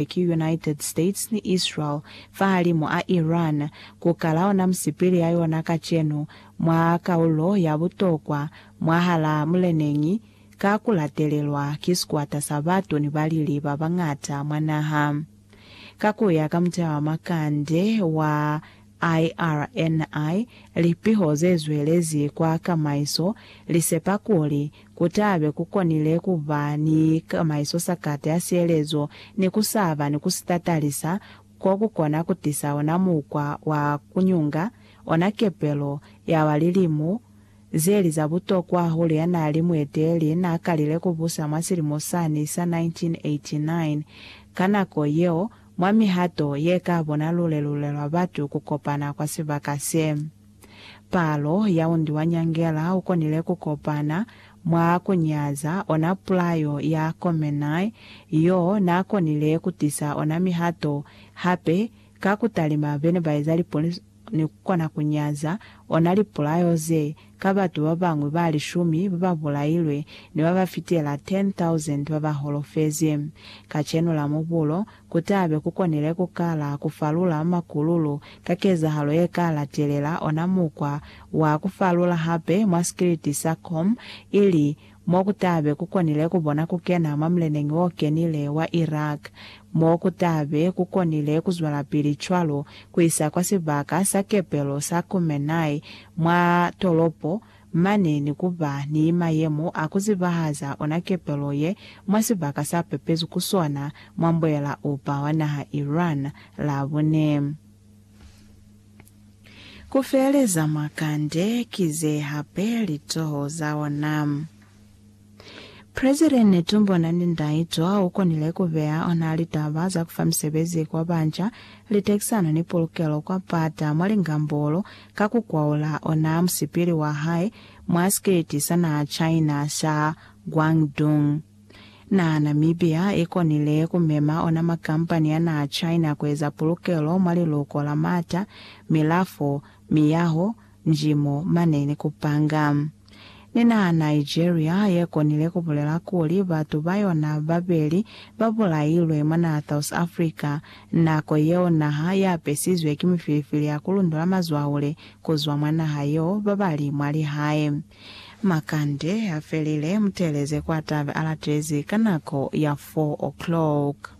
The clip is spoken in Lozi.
ki United States ni Israel fahalimu a Iran, ku kala ona musipili ya yona kacenu mwa kaulo ya butokwa mwahala muleneñi ka ku latelelwa ki sikwata sa batu ni balili ba bañata mwa naha. Ka ku ya ka muteha wa makande wa IRNI, Lipiho ze zwelezi kwa kamaiso li sepa kuli ku ta be ku konile ku ba ni kamaiso sa kata ya sielezo ni ku sa ba ni ku si tatalisa ko ku kona ku tisa ona mukwa wa ku nyunga ona kepelo ya wa lilimu ze li za butokwa hahulu ya n'a li mueteleli n'a kalile ku busa mwa silimo sani sa 1989. Ka nako yeo, Mwa mihato ye ka bona lulelule lwa batu ku kopana kwa sibaka se, palo ya undi wa nyangela u konile ku kopana mwa ku nyaza ona pulayo ya Khomeini yo n'a konile ku tisa ona mihato hape ka ku talima be ne ba eza lipoliso ni ku kona ku nyaza ona lipulayo ze ka batu ba bañwi ba lishumi ba ba bulailwe ni ba ba fitela 10,000 ba ba holofezi. Kacenu la Mubulo, ku ta be ku konile ku kala ku falula makululu ka kezahalo ye ka latelela, ona mukwa wa ku falula hape mwa sikiliti sa Qom, ili mo ku ta be ku konile ku bona ku kena mwa muleneñi wo kenile wa Iraq, mo ku ta be ku konile ku zwelapili cwalo ku isa kwa sibaka sa kepelo sa Khumennai mwa tolopo mane ni ku ba ni mayemo a ku zibahaza ona kepelo ye mwa sibaka sa pepezwi ku sona mwa mbuela-upa wa naha Iran Labune. Ku feeleza mwa kande ki ze hape litoho za ona. President Netumbo Nandi-Ndaitwah u konile ku beya ona litaba za ku fa misebezi kwa banca, litekisano ni pulukelo kwa pata mwa lingambolo ka ku kwaula ona musipili wa hae mwa sikiliti sa naha China sa Guangdong. Na Namibia i konile ku mema ona makampani a naha China ku eza pulukelo mwa liluko la mata, milafo, miyaho, njimo, mane ni ku panga. Ni naha Nigeria ye konile ku bulela kuli batu ba yona ba beli ba bulailwe mwa naha South Africa nako yeo naha ya apesizwe ki mifilifili ya ku lundula mazwaule ku zwa mwa naha yeo ba ba li mwa lihae Makande a felile, muteleze kwa tabe a latezi ka nako ya 4 o'clock.